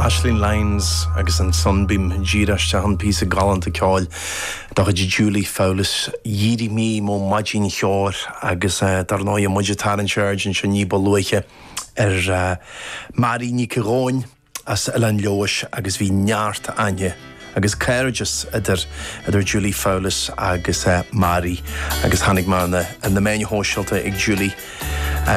Aisling Lyons agus an Sunbeam díreach isteach an píosa galánta ceoil de chuid Julie Fowlis Dh'èirich mi moch madainn cheòthar agus dar ndóigh muid ag tarraingt aird anseo ní ba luaithe ar Mary Nic a' Ghobhainn as Oileán Leodhais agus bhí neart aithne agus cairdeas idir idir Julie Fowlis agus Mary agus chonaic mé ar na na meáin shóisialta ag Julie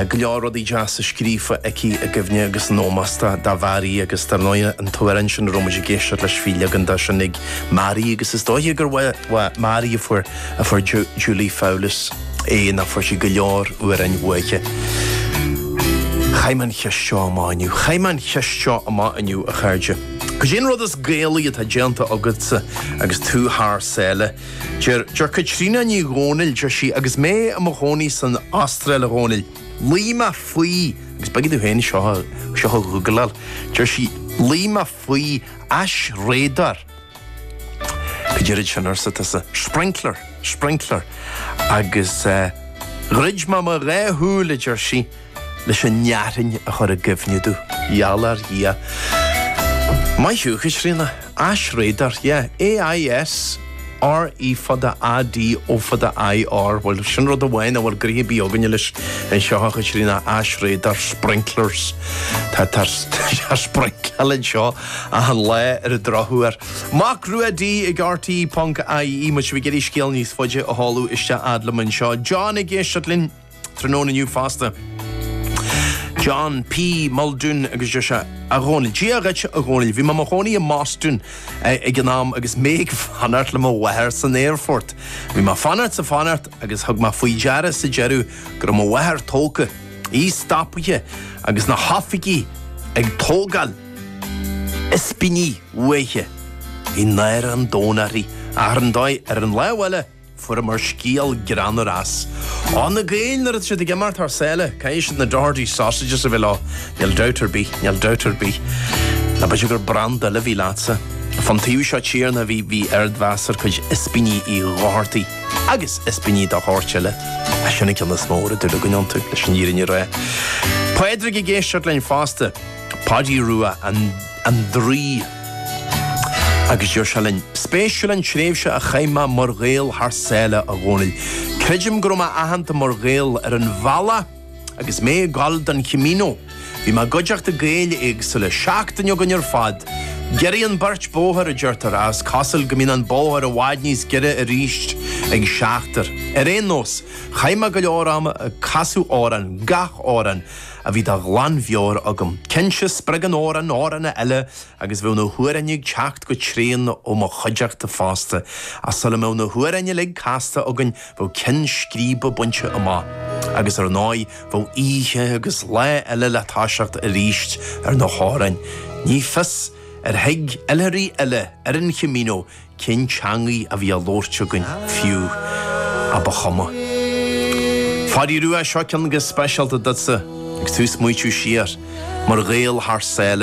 go leor rudaí deasa scríofa aici i gcuimhne agus in ómós do do Mhary agus dar ndóigh an t-amhrán sin a raibh muid ag éisteacht leis bhí leagan dó sin ag Mary agus is dóiche gur uaidh Mary a fuair a fuair Julie Fowlis é nó fuair sí go leor amhráin uaithi. Chaith mé an cheist seo amach inniu. Chaith mé an cheist seo amach inniu a chairde. Cad é an rud is Gaelaí atá déanta agatsa agus tú thar sáile? Deir Caitríona Ní Dhomhnaill, deir sí, Agus mé i mo chónaí san Astráil, a Dhónaill, luigh mé faoi, agus b'éigean domh féin seo a ghoogláil, deir sí, luigh mé faoi aisréadóir. Cad é rud sin, arsa tusa? Sprinkler, sprinkler. Agus dhruid mé mo dhá shúil, a deir sí. leis an fhearthainn a chur i gcuimhne domh. Gheall ar Dhia. Maith thú, a Chaitríona. Aisréadóir, yeah. AIS, RE fada AD ó fada IR. Bhuel, sin rud amháin nach bhfuil gnoithe ar bith againne leis anseo, a Chaitríona, aisréadóir, sprinklers. Tá, táthar ag sprincleáil anseo achan lá ar an drochuair. Mac Ruaidí ag RTÉ.ie, má tá sibh ag iarraidh scéal níos faide a sheoladh isteach fhad liom anseo. John ag éisteacht linn. Tráthnóna inniu fosta, John P. Muldoon agus deir sé a Dhónaill. Dia dhuit a Dhónaill. Bhí mé i mo chónaí i mBostún eh, ag an am agus mé ag fanacht le mo mháthair san aerfort. Bhí mé ag fanacht is ag fanacht agus thug mé faoi deara sa deireadh go raibh mo mháthair tógtha, í stopaithe agus na hoifigigh ag tógáil ispíní uaithi. Bhí náire an domhain uirthi. Ach ar ndóigh ar an lámh eile. Fuaireamar scéal greannmhar as. Ó, na Gaeil, nuair atá siad ag imeacht thar sáile, caithfidh siad na Doherty sausages a bheith leo, níl dabht ar bith, níl dabht ar bith. Nó b'fhéidir gur branda eile a bhí leatsa. Fán taobh seo tíre a bhí, bhí ardmheas ar chuid ispíní Uí Dhochartaigh, agus ispíní dá shórt eile. Ach sin an ceann is mó a raibh dúil againn iontu, leis an fhírinne a rá. Pádraig ag éisteacht linn fosta, Páidí Rua, an. an draoi. Agus deir sé linn, 'Spéisiúil an tréimhse a chaith mé mar Ghael thar sáile, a Dhónaill. Creidim go raibh mé aitheanta mar Ghael ar an bhealach agus mé ag gabháil don Chamino. Bhí mé i gcuideachta Gaeil éagsúla, seachtain againn ar fad. Giorraíonn beirt bóthar, a deirtear, ach is cosúil go mbíonn an bóthar i bhfad níos giorra arís ag seachtar. Ar aon nós, chaith mé go leor ama ag casadh amhrán, gach amhrán, a bhí de ghlanmheabhair agam. Cinnte, spreagann amhrán amhrán eile agus bheadh na hamhráin ag teacht go tréan ó mo chuideachta fosta, ach sula mbeadh na hamhráin uilig casta againn bheadh ceann scríbe bainte amach, agus ar ndóigh bheadh oíche agus lá eile le toiseacht arís ar na hamhráin. Ní fios ar thuig oilthirí eile ar an Chamino cén teangaidh a bhí á labhairt againn fiú, ach ba chuma. Phadaí Rua, seo ceann go speisialta duitsa, agus tú ag smaoitiú siar, mar Ghael thar sáile,